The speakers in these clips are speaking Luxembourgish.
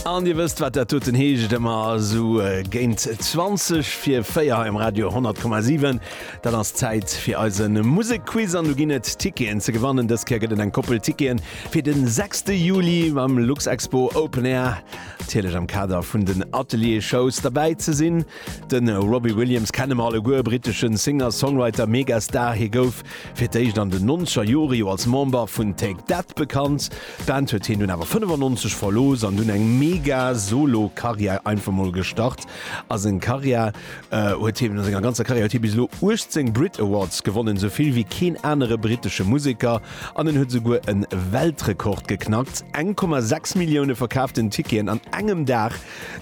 An Dir wësst, wat dat doten heescht, ëmmer esou géint 20 fir 4 hei um Radio 100,7. Dat ass d'Zäit fir eise Musekquiz an do ginn et Ticketen ze gewannen. Dës Kéier gëtt et eng Koppel Ticketen fir de 6. Juli beim Luxexpo Open Air, natierlech am Kader vun den Atelier-Shows. Derbäi ze sinn de Robbie Williams, kenne mer alleguer, britesche Singer-Songwriter, Megastar. Hie gouf Fir d'éischt an den nonzeger Jore jo als Member vun Take That bekannt, d'Band huet hien dunn awer 95 verlooss an dunn eng mega Solo Karriär einfach mol gestart a seng Karriär huet hien a senger ganzer Karriär huet hie bis elo 18 Brit Awards gewonnen, esou vill wéi keen anere brittesche Museker an en huet esouguer en Weltrekord geknackt, 1,6 Millioune verkaaften Ticketen an engem Dag.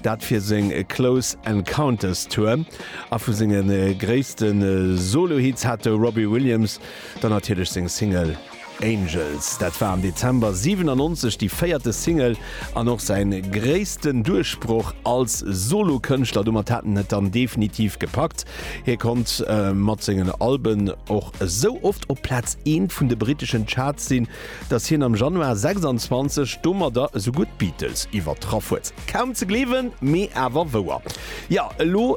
Dat fir seng Close Encounters Tour. A vu senge gréisste Solo-Hits hat de Robbie Williams dann natierlech seng Single Angels. Dat war am Dezember 97 déi véierte Single an och säi gréissten Duerchbroch als Solo-Kënschtler. Domat hat en et dann definitiv gepackt. Hie konnt mat sengen Alben och esou oft op Plaz eent vun de britteschen Charts sinn, datt hien am Januar 26 domadder esou gutt d'Beatles iwwertraff huet. Kaum ze gleewen, mee awer wouer. Jo, elo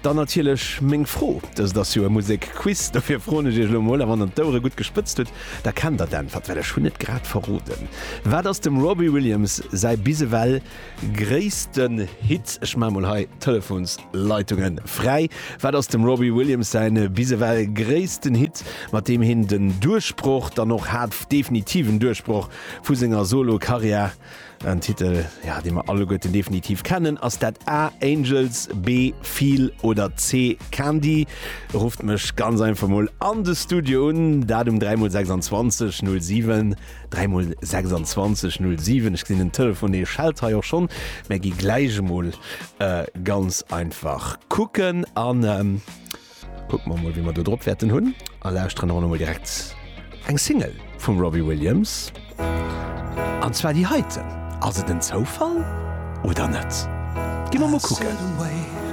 dann natierlech meng Fro, dëst ass jo e Musek-Quiz, dofir froen ech Iech elo mol, a wann Der d'Ouere gutt gespëtzt hutt, da kennt Der d'Äntwert, well ech hunn et grad verroden, Wat ass dem Robbie Williams säi bis ewell Gréissten Hit, ech maan mol hei Telefonsleitungen fräi, wat ass dem Robbie Williams säin bis ewell gréissten Hit, mat deem hien den Duerchbroch dann och hat, definitiven Duerchbroch vu senger Solo Karriär? En Titel jo dee mer alleguerten definitiv kennen, ass dat A, Angels, B, Feel oder C, Candy? Rufft mech ganz einfach mol an de Studio un, dat um 3 mol 26 07. 3 mol 26 null 7 ech gesinn den Telefoné schellt hei och schonn, mä gi gläich emol ganz einfach kucken an kucke mer emol wéi mer do drop wäerten hunn a lauschteren erëm emol direkt eng Single vum Robbie Williams an zwar déi heiten. Ass et en Zoufall oder net? Gi mer emol kucken.